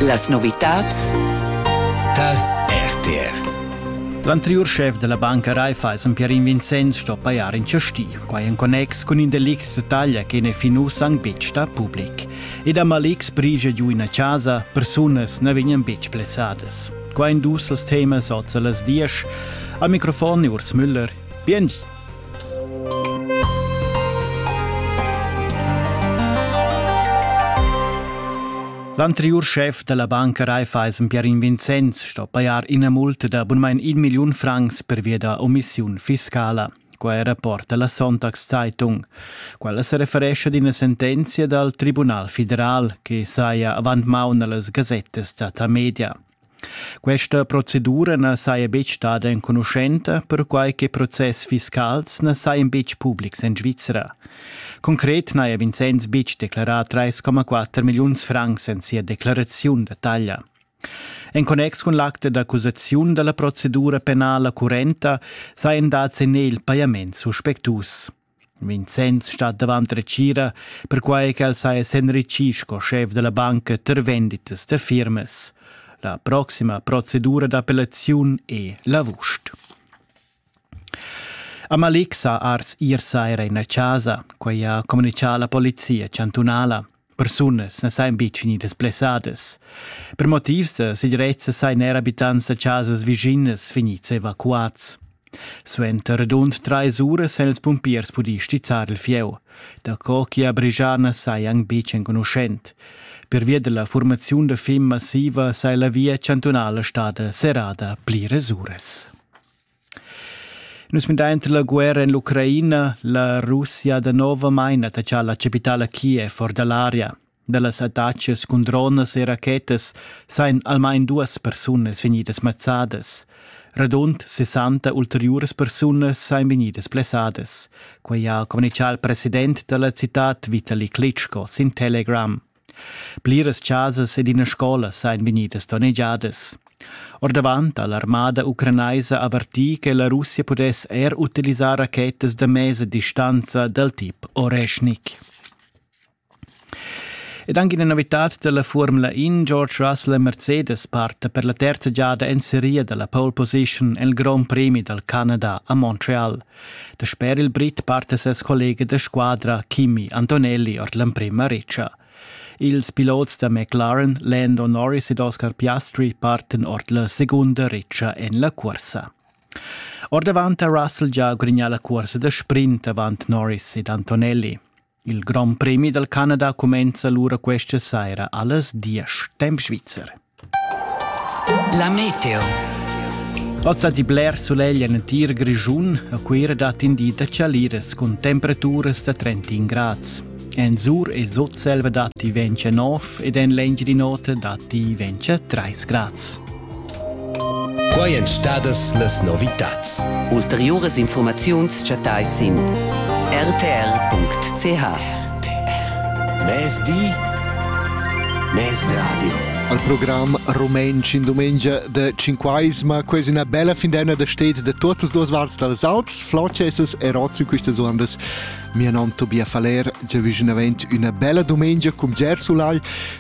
Las novitads tar RTR. L'anteriur schef della banca Raiffeisen Pierin Vincenz sto paiar in chasti, quai en connex cun in delict de taglia che ne fin uss han betg sta public. Ed a Malics prigia giu ina casa, persunas ne vegnan betg plezzadas. Quai in dus als temas oz las diesch. Al microfon Urs Müller. Bien L'anteriur schef dalla banca Raiffeisen Pierin Vincenz sto pajar ina multa da bunmein in milliun francs per via da omissiun fiscala. Quai è rapport dalla Sonntagszeitung. Quella se referesce ad una sentenza dal Tribunal federal che saja avant maun allas gazettas data media. Questa procedura na saja betg stada enconuschenta, perquai che process fiscals na sajan betg publics en Svizra. Concret n'haja Vincenz betg declarà 3,4 milliuns francs en sia declaraziun da taglia. En connex cun l'acte d'accusaziun da la procedura penala currenta sajan dads en el pajaments suspectus. Vincenz stat davant retgira, perquai ch'el saja s'enritgì sco schef da la banca tar venditas da firmas. La proxima procedura d'appellaziun è l'avust. Amalik sa ars ir saira in la chasa, quai ha communitgà la polizia chantunala. Persunas na sajan betg vegnidas blessadas. Per motivs da segirezza sajan er abitants da chasas vischinas vegnids evacuads. Suenter rund trais uras han ils pumpiers pudì stizzar il fieu. Daco che a Brigiana sajan betg enconuschent. Pervia della formaziun da fim massiva sei la via chantunala stada serrada pliras uras. Nus mindainter la guerra in l'Ucraina, la Russia danovamaing attachà la chapitala Kiev or da l'aria. Da las attacas cun dronas e rachetas sain almain duas persunas vegnidas mazzadas. Radund 60 ulteriuras persunas sain vegnidas blessadas. Quai ha communichà il president da la citad Vitali Klitschko sin Telegram. Pliras chasas ed ina scola sain vegnidas donnegiadas. Ordavant ha l'armada ucranaisa avertì che la Russia pudess er utilisar rachetas da mesa distanza dal tip Oreshnik. Ed anche una novità della Formula In, George Russell Mercedes parte per la terza giada in serie della pole position nel Grand Prix dal Canada a Montreal. Dasper il Brit parta ses collega da squadra Kimi Antonelli ord l'emprima retscha. Ils pilots da McLaren Lando Norris ed Oscar Piastri parten ord la segunda retscha en la cursa. Ordavant ha Russell gia grignà la cursa da sprint avant Norris ed Antonelli. Il Grand Premi dal Canada cumenza lura questa saira allas diesch temp svizzer. La meteo. Ozza di bler solegl en tir Grischun a Cuira dat in di da chaliras cun temperaturas da 30 grads. En Sur e Sutselva datti 29 ed en l'Engiadin'Ota datti 30 grads. Quai èn stadas las novitads. Ulteriuras infurmaziuns chattais sin rtr.ch. Mezdi, mezradio. Al program Rumantsch in dumengia de Cinquaisma, quasi una bella findenna da state de tutte le parti delle Alps, Flocesas e Rozzi, queste ondas. Mia non Tobias Faller, già vicino avent una bella domenica cum Gersulai,